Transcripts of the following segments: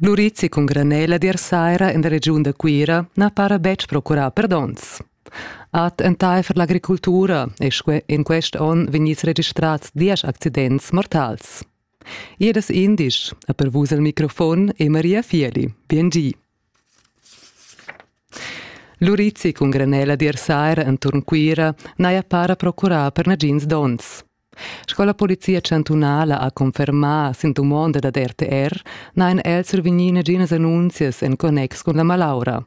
L'urizi cun granella d'ir saira en la regiun da Cuira na para betg procurà perdons. Ad entaifer l'agricultura è in quest onn vegnids registrads diesch accidents mortals. Ier das indisch ha per vus al microfon e Maria Fieli. Bien gi. L'urizi cun granella d'ir saira enturn Cuira n'haja para procurà per nagins donns. Sco la polizia chantunala ha confermà sin dumonda dad RTR n'hajan els survegnì naginas annunzias en connex cun la malaura.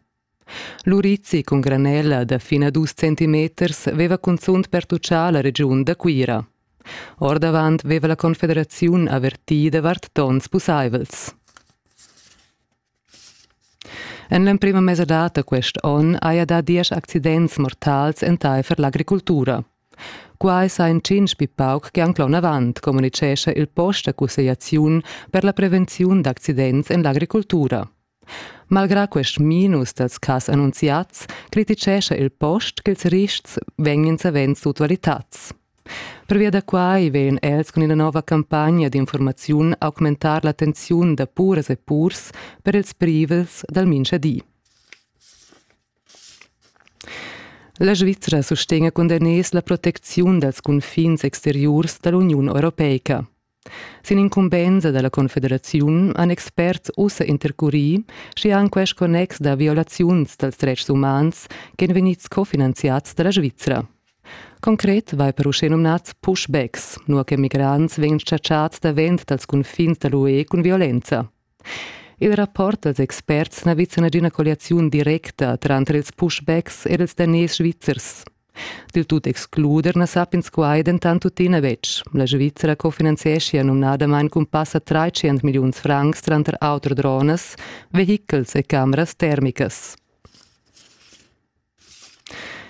L'urizi cun granella da fin a dus centimeters veva cunzunt pertutgà la regiun da Cuira. Ordavant veva la Confederaziun avertì davart tons pussaivels. En l'emprima mesadad da quest onn haja dà diesch accidents mortals entaifer l'agricultura. Quai sajan tschintg pli pauc che anc l'onavant, communitgescha il post da cussegliaziun per la prevenziun d'accidents en l'agricultura. Malgrà quest minus dals cas annunziads, crititgescha il post ch'ils rists vegnan savens sutvalitads. Pervia da quai vegn els cun ina nova campagna d'informaziun augmentar la tensiun da puras e purs per ils privels dal minchadi. La Svizra sustegna cun daners la protecziun dals cunfins exteriurs da l'Uniun europeica. Sin incumbensa dalla confederaziun han experts ussa intercurì schi han quest connex da violaziuns dals dretgs umans ch'ein vegnids cofinanziads dalla Svizra. Concret vai per uschenumnads pushbacks, nua che migrants vegn chatschats davent dals cunfins dall'UE cun violenza. Il rapport dals experts n'ha vis nagina colliaziun directa tranter ils pushbacks ed ils daners svizzers. Dil tut excluder na sappians quai dentant tuttina betg. La Svizzera cofinanzieschia numnadamain cun passa 300 milliuns francs tranter auter dronas, vehichels e cameras termicas.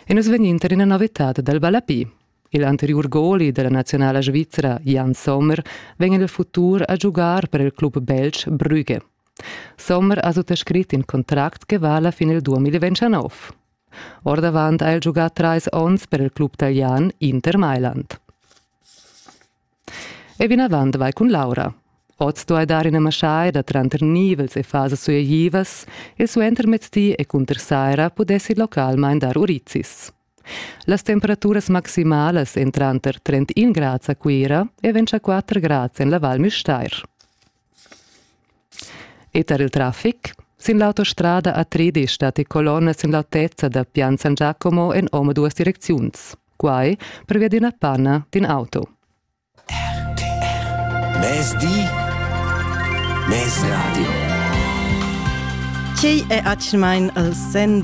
E nus vegnin tar ina novitad dal ballapi. Il anteriur goli della nazionala svizra Jan Sommer vegn il futur a giugar per il club belg Brügge. Sommer ha suttascrit in contract che vala fin il 2029. Ordavant ha el giugà trais onns per il club talian Inter Mailand. E vinavant vai cun Laura. Oz duai dar ina maschaida tranter nivels e fasas sueglivas e suentermezdi e cunter saira pudessi localmain dar urizis. Las temperaturas maximalas èn tranter 31 grads a Cuira e 24 grads en la Val Müstair. E tar il traffic? Sin l'autostrada a Tredisch datti colonnas en l'autezza da Pian San Giacomo en omaduas direcziuns. Quai pervia d'ina panna d'in auto. Mezdi, mezradio. Quei è atschmain il sen del